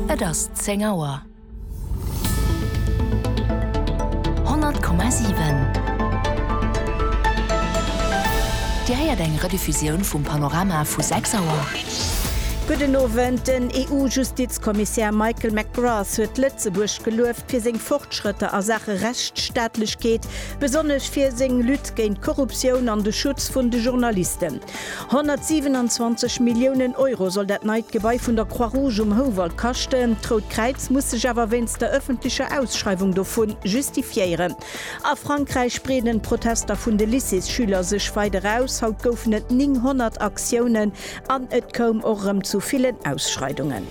Et ass zéng Auer. 100,7 Dir héiert eng Rediffusioun vum Panorama vu 6 Auer. Gudden Owend, Den EU-Justizkommissär Michael McGrath huet Lëtzebuerg gelueft fir seng Fortschrëtter a Saache Rechtsstaatlechkeet, besonnesch fir seng Lutte géint d'Korruptioun an de Schutz vun de Journalisten. 127 Milliounen Euro soll dat neit Gebai vun der Croix-Rouge um Houwald kaschten. D'Rout Kräiz muss sech awer wéinst der ëffentlecher Ausschreiwung dovu justifiéieren. A Frankräich breeden d'Protester vun de Lycéesschüler sech weider aus. Haut goufen et 900 Aktiounen an et koum och erëm zu villen Ausschreidungen.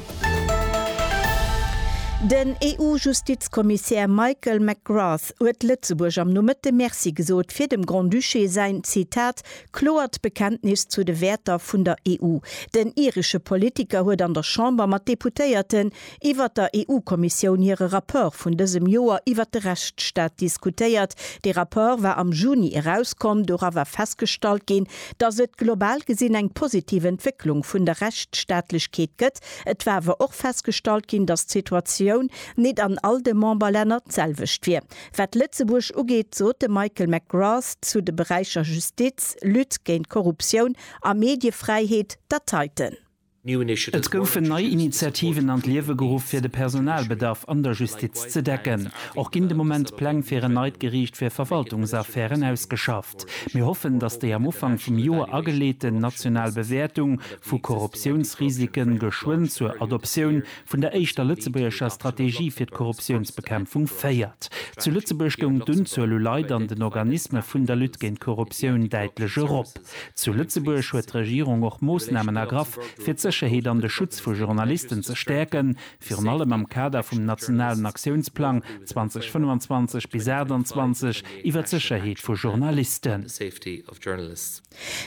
Den EU-Justizkommissär Michael McGrath huet Lëtzebuerg am Nomëtte Merci gesot fir dem Grand-Duché säin, Zitat, Kloert Bekenntnis zu de Wäerter vun der EU. Den iresche Politiker huet an der Chamber mat Deputéierten iwwert der EU-Kommissioun hire Rapport vun dësem Joer iwwert de Rechtsstaat diskutéiert. Dee Rapport war am Juni erauskomm. Dora war festgestallt ginn, datt et global gesinn eng positiv Entwécklung vun der Rechtsstaatlechkeet gëtt. Et war awer och festgestallt ginn, datt d'Situatioun nit an all de Memberlänner d'selwecht wier. Wat Lëtzebuerg ugeet, sot de Michael McGrath zu de Beräicher Justiz, Lutte géint Korruptioun a Mediefräiheet, datt heiten. Et goufen nei Initiativen an d'Liewe geruff, fir de Personalbedarf an der Justiz ze decken. Och ginn de Moment d'Pläng fir en neit Geriicht fir Verwaltungsaffären ausgeschafft. Mir hoffen, datt déi am Ufank vum Joer ageleeten national Bewäertung vu Korruptiounsrisike geschwënn zur Adoptioun vun der éischter lëtzebuergescher Strategie fir d'Korruptiounsbekämpfung féiert. Zu Lëtzebuerg goung d'Unzuel u Leit an den Organisme vun der Lutte géint d'Korruptioun däitlech erop. Zu Lëtzebuerg huet d'Regierung och Moossnamen ergraff, fir d'Sécherheet an de Schutz vu Journalisten ze stäerken, virun allem am Kader vum nationalen Aktiounsplang 2025 bis 28 iwwer d'Sécherheet vu Journalisten.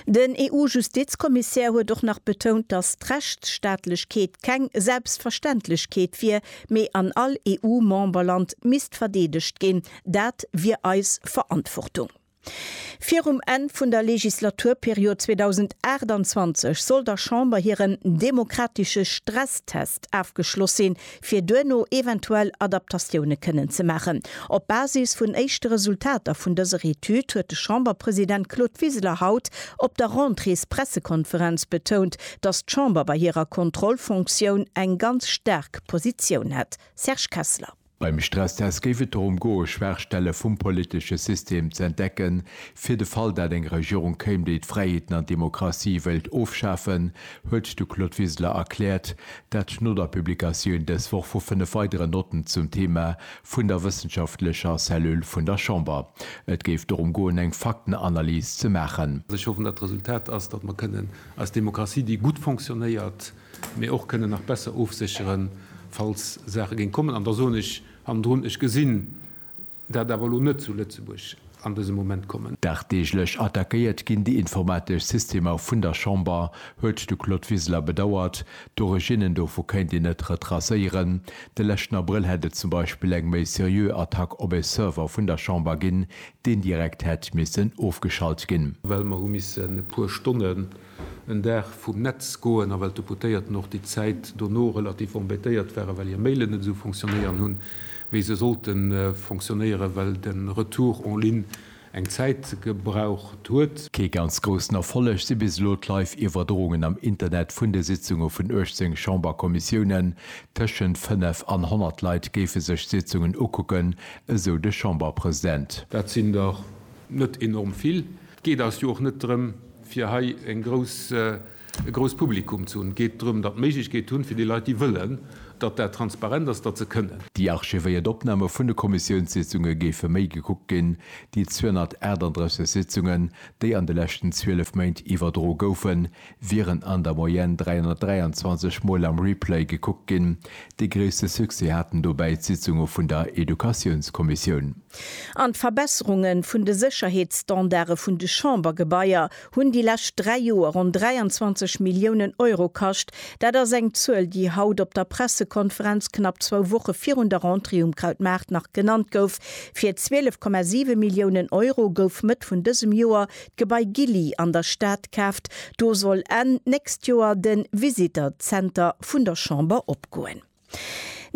Den EU-Justizkommissär huet och nach betount, datt d'Rechtsstaatlechkeet keng Selbstverständlechkeet wier, mee an all EU-Memberland misst verdeedegt ginn. Dat wier eis Verantwortung. Virum Enn vun der Legislaturperiod 2028 soll der Chamber hiren demokratesche Stresstest afgeschloss sinn, fir duerno eventuell Adaptatioune kënnen ze maachen. Op Basis vun éischte Resultater vun dëser Etüd huet de Chamberpresident Claude Wiseler haut op der Rentréespressekonferenz betount, datt d'Chamber bei hirer Kontrollfonktioun eng ganz staark Positioun hätt. Serge Kessler. Beim Stresstest géif et dorëm goe Schwaachstelle vum politesche System ze entdecken, fir de Fall dat eng Regierung kéim, déi d'Fräiheeten an d'Demokratie wéilt ofschafen, huet de Claude Wiseler erkläert, Dat schnot a Publikatioun dës Woch vu fënnef weideren Notten zum Thema vun der wëssenschaftlecher Cellule vun der Chamber. Et géif dorëm goen, eng Faktenanalys ze maachen. Ech hoffen, datt d'Resultat ass, datt mer kënnen eis Demokratie, déi gutt fonctionnéiert, mee och kënnen nach besser ofsécheren, falls Saache géing kommen. An da soen ech hannendrun, Ech gesinn, Dat awer elo net zu Lëtzebuerg an dësem Moment kommen. Dagdeeglech attackéiert ginn déi informatesch Systemer vun der Chamber, huet de Claude Wiseler bedauert. D'Originnen dovu kéint een net retracéieren. De leschten Abrëll hätt et zum Beispill eng méi seriö Attack op e Server vun der Chamber ginn, deen direkt hätt missen ofgeschalt ginn. Well mer hu missen e puer Stonnen en Dag vum Netz goen a well d'Deputéierten och déi Zäit dono relativ embêtéiert waren, well hir Mailen net esou fonctionnéieren hunn, wéi se sollte fonctionnéieren, well de Retour en ligne eng Zäit gebraucht huet. Kee ganz groussen Erfolleg si bis elo d'Live-Iwwerdroungen am Internet vun de Sitzunge vun 18 Chamberkommissiounen. Tëschent 5 an 100 Leit géife sech d'Sitzungen ukucken, esou de Chamberpresident. Dat sinn der net enorm vill. Et geet eis jo och net drëm, fir hei e grousst Publikum ze hunn. Et geet drëm, datt Méiglechkeet hunn, fir déi Leit, déi wëllen, datt dat transparent ass, datt se kënnen. Déi archivéiert Opname vun de Kommissiounssitzunge géife méi gekuckt ginn, déi 238 Sitzungen, déi an de leschten 12 Méint iwwerdro goufen, wieren an der Moyenne 323 Mol am Replay gekuckt ginn. Dee gréisste Succès haten dobäi d'Sitzunge vun der Educatiounskommissioun. An d'Verbesserunge vun de Sécherheetsstandarde vun de Chambergebaier hunn déi lescht dräi Joer ronn 23 Milliounen Euro kascht. Dat ass eng Zuel, déi haut op der Pressekonferenz knapp zwou Woche virun der Rentrée um Krautmaart nach genannt gouf. Fir 12,7 Milliounen Euro gouf Mëtt vun dësem Joer d'Gebai Gilly an der Stad kaaft, do soll Enn d'nächst Joer de Visitor Center vun der Chamber opgoen.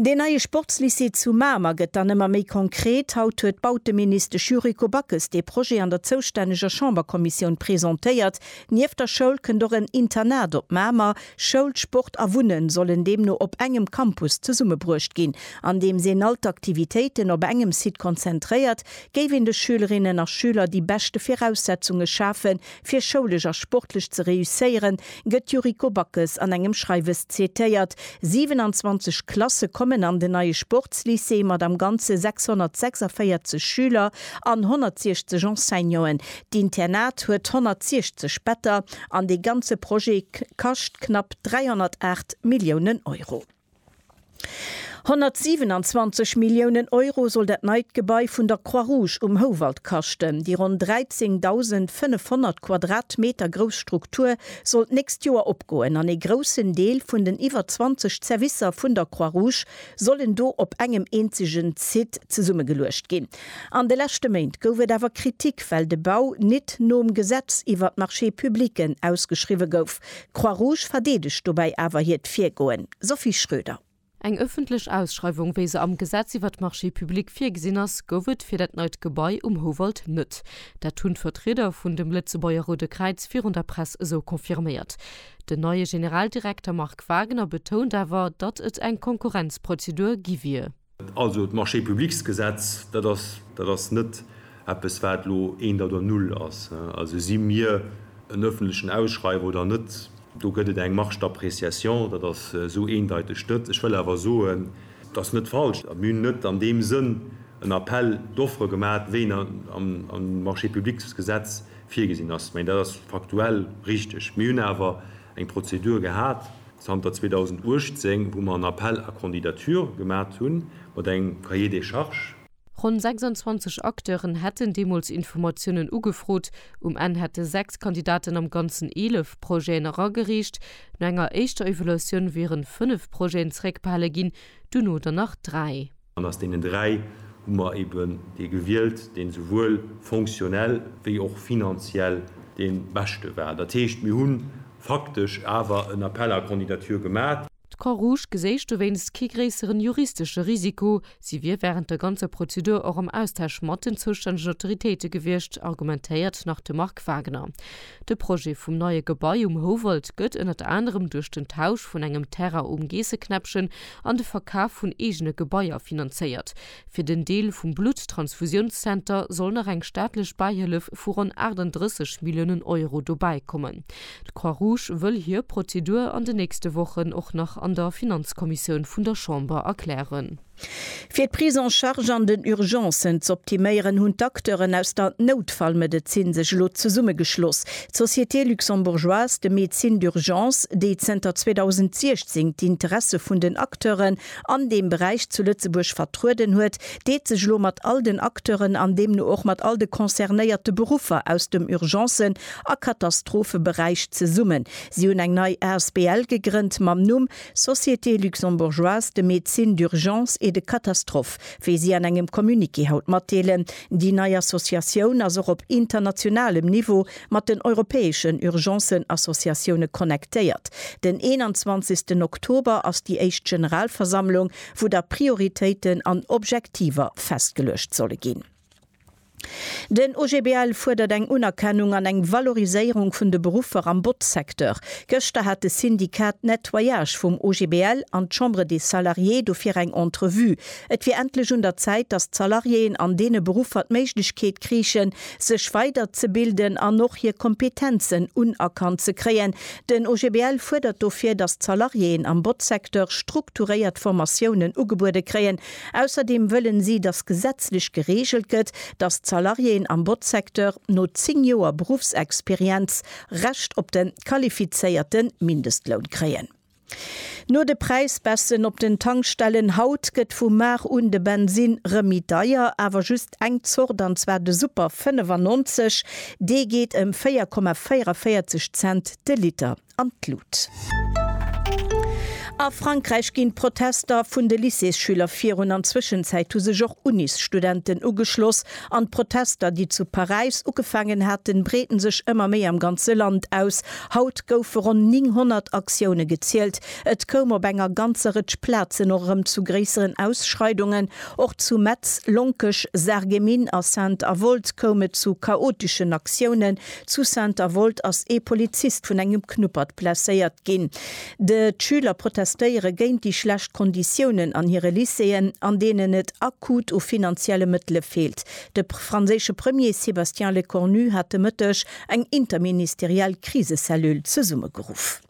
Deen neie Sportslycée zu Mamer gëtt dann ëmmer méi konkret. Haut huet d'Bauteministesch Yuriko Backes dee Projet an der zoustänneger Chamberkommissioun presentéiert. Nieft der Schoul kënnt och en Internat op Mamer. Schoul, Sport a Wunne sollen deemno op engem Campus zesummebruecht ginn, andeems een all d'Aktivitéiten op engem Site konzentréiert, géif een de Schülerinnen a Schüler déi beschte Viraussetzunge schafen, fir schoulesch a sportlech ze réusséieren, gëtt d'Yuriko Backes an engem Schreiwes zitéiert. 27 Klasse kommen an den neie Sportslycée mat am Ganze 646 Schüler an 160 Enseignanten. D'Internat huet 160 Better an dee ganze Projet kascht knapp 308 Milliounen Euro. 127 Milliounen Euro soll dat neit Gebai vun der Croix-Rouge um Houwald kaschten. Déi ronn 13.500 Quadratmeter grouss Struktur soll d'nächst Joer opgoen an ee groussen Deel vun den iwwer 20 Zerwisser vun der Croix-Rouge sollen do op engem eenzegen Site zesummegeluecht ginn. An de leschte Méint gouf et awer Kritik, well de Bau nit nom Gesetz iwwer d'Marchés publics ausgeschriwwe gouf. D'Croix Rouge verdeedegt dobäi awer hiert Virgoen. Sophie Schröder. Eng ëffentlech Ausschreiwung, wéi se am Gesetz iwwert d'Marchés publics virgesinn ass, gouf et fir dat neit Gebai um Houwald net. Dat hunn d'Vertrieder vun dem Lëtzebuerger Roude Kräiz virun der Press esou confirméiert. Den neie Generaldirekter Marc Wagener betount awer, datt et eng Konkurrenzprozedur gi wier. Also d'Marché-publics-Gesetz, dat ass, dat ass net eppes, wat elo eent oder null ass. Also si mir en öffentlechen Ausschreiwer oder net, do gëtt et eng Marge d'appréciation, dat ass esou eendeiteg net. Ech wëll awer soen, dat ass net falsch. Mir hunn net an deem Sënn en Appel d'offres gemaat, wéi en am Marché-publics-Gesetz virgesinn ass. Mä dat ass faktuell richtig. Mir hunn awer eng Prozedur gehat. Zanter 2018, wou mer en Appel à candidatures gemat hu mat engem Cahier des charges. Ronn 26 Acteuren hätten deemools Informatiounen ugefrot. Um Enn hätte sechs Kandidaten am Ganzen eelef Projeten eragereecht. No enger éischter Evaluatioun wieren fënnef Projeten zeréckbehale ginn, duerno der nach dräi. An aus deenen dräi hu mer eben dee gewielt, deen esouwuel fonctionnel wéi och finanziell dee beschte war. Dat heescht, mir hu faktesch awer en Appel à candidatures gemat. D'Croix-Rouge geséich dowéinst kee gréisseren juristesche Risiko. Si wier während der ganzer Prozedur och am Austausch mat den zoustännegen Autoritéite gewiescht, argumentéiert nach de Marc Wagner. De Projet vum neie Gebai um Houwald gëtt ënnert anerem duerch den Tausch vun engem Terrain um Geesseknäppchen an de Verkaf vun eegene Gebaier finanzéiert. Fir den Deel vum Blutttransfusiounszenter soll nach eng staatlech Bäihëllef vu ronn 38 Milliounen Euro dobäi kommen. D'Croix-Rouge wëll hir Prozedur an den nächste Wochen och nach an der Finanzkommissioun vun der Chamber erklären. Fir d'Prise en charge an den Urgencen z'optiméieren, hunn d'Acteuren aus der Noutfallmedezin sech elo zesummegeschloss. D'Société luxembourgeoise de médecine d'urgence, déi zënter 2016 d'Interesse vun den Acteuren an deem Beräich zu Lëtzebuerg vertrueden huet, deet sech elo mat all den Acteuren an deemno och mat all de concernéierte Beruffer aus dem Urgencen a Katastropheberäich zesummen. Si hunn eng nei asbl gegrënnt mam Numm Société luxembourgeoise de médecine d'urgence et de catastrophe, wéi si an engem Communiqué haut matdeelen. Déi nei Associatioun ass och op internationalem Niveau mat den europäeschen Urgencen-Associatioune connectéiert. Den 21 Oktober ass déi éischt Generalversammlung, wou da Prioritéiten an Objektiver festgeluecht solle ginn. Den OGBL fuerdert eng Unerkennung an eng Valoriséierung vun de Beruffer am Botzsecteur. Gëschter hat de Syndicat Nettoyage vum OGBL an d'Chambre des Salariés dofir eng Entrevue. Et wier endlech un der Zäit, datt d'Salariéen an deene Beruffer d'Méiglechkeet kriichen, sech weider ze bilden an och hir Kompetenzen unerkannt ze kréien. Den OGBL fuerdert dofir, datt d'Salariéen am Botzsecteur strukturéiert Formatiounen ugebuede kréien, Ausserdeem wëllen si, datt gesetzlech gereegelt gëtt, datt d'Salariéen am Botzsecteur no 10 Joer Beruffsexperienz Recht op de qualifizéierte Mindestloun kréien. No de Präisbaissen op den Tankstellen haut gëtt vu mar un de Bensinn rëm méi deier, awer just eng Zort, an zwar de Super 95. Dee geet ëm 4,44 Cent de Liter. an d'Lut. A Frankräich ginn d'Protester vun de Lycéesschüler virun. An Zwëschenzäit hu sech och Unisstudenten ugeschloss. An d'Protester, déi zu Paräis ugefaangen haten, breeten sech ëmmer méi am ganze Land aus. Haut goufe ronn 900 Aktioune gezielt. Et koum op enger ganzer Rëtsch Plazen och erëm zu gréisseren Ausschreidungen. Och zu Metz, Lonkech, Sarreguemines a Sainte-Avold koum et zu chaoteschen Aktiounen. Zu Saint-Avold ass ee Polizist vun engem Knuppert blesséiert ginn. De Schüler protestéiere géint déi schlecht Konditiounen an hire Lycéeën, an deenen et akut u finanzielle Mëttele feelt. De franséische Premier Sébastien Lecornu hat de Mëtteg eng interministeriell Krisecellule zesummegeruff.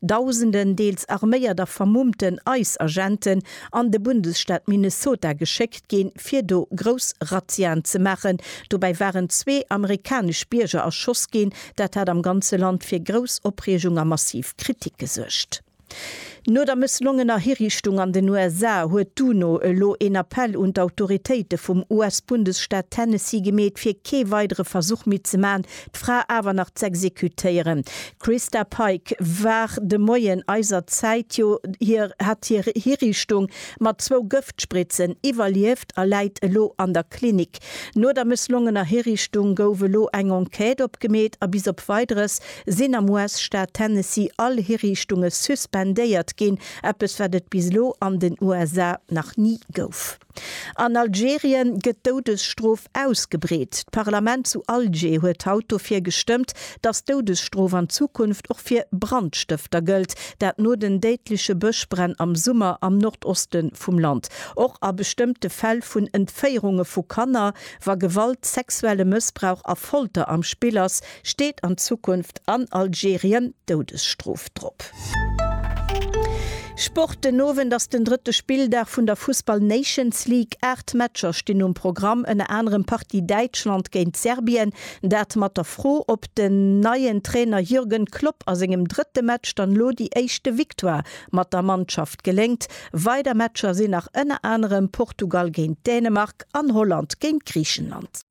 Dausenden deels arméiert a vermummten ICE-Agenten an de Bundesstaat Minnesota geschéckt ginn, fir do grouss Razziaen ze maachen. Dobäi waren zwee amerikanesch Bierger erschoss ginn. Dat hat am ganze Land fir grouss Opreegung a massiv Kritik gesuergt. No der mësslongener Hiriichtung an den USA huet d'UNO elo een Appell un d'Autoritéite vum US-Bundesstaat Tennessee gemeet, fir kee weidere Versuch méi ze maachen, d'Fra awer nach z'exekutéieren. D'Christa Pike war de Moien eiser Zäit jo hir hat hir Hiriichtung mat zwou Gëftspritzen iwwerlieft a läit elo an der Klinik. No der mësslongener Hiriichtung gouf elo eng Enquête opgemeet a bis op Weideres sinn am US-Staat Tennessee all Hiriichtunge suspendéiert ginn, eppes wat et bis elo an den USA nach ni gouf. An Algerien gëtt d'Doudesstrof ausgebreet. D'Parlament zu Alger huet haut dofir gestëmmt, datt d'Doudesstrof an Zukunft och fir Brandstëfter gëllt, dat no den déidleche Bëschbränn am Summer am Nordoste vum Land. Och a bestëmmte Fäll vun Entféierunge vu Kanner, wa Gewalt, sexuelle Mëssbrauch a Folter am Spill ass, Steet an Zukunft an Algerien d'Doudesstrof drop? Sport, Den Owend ass den drëtte Spilldag vun der Fussball Nations League. Aacht Matcher stinn um Programm, ënner anerem Partie Däitschland géint Serbien. Dat mat der Fro, ob den neien Trainer Jürgen Klopp a sengem drëtte Match dann elo déi éischte Victoire mat der Mannschaft geléngt. Weider Matcher sinn nach ënner anerem Portugal géint Dänemark an Holland géint Griichenland.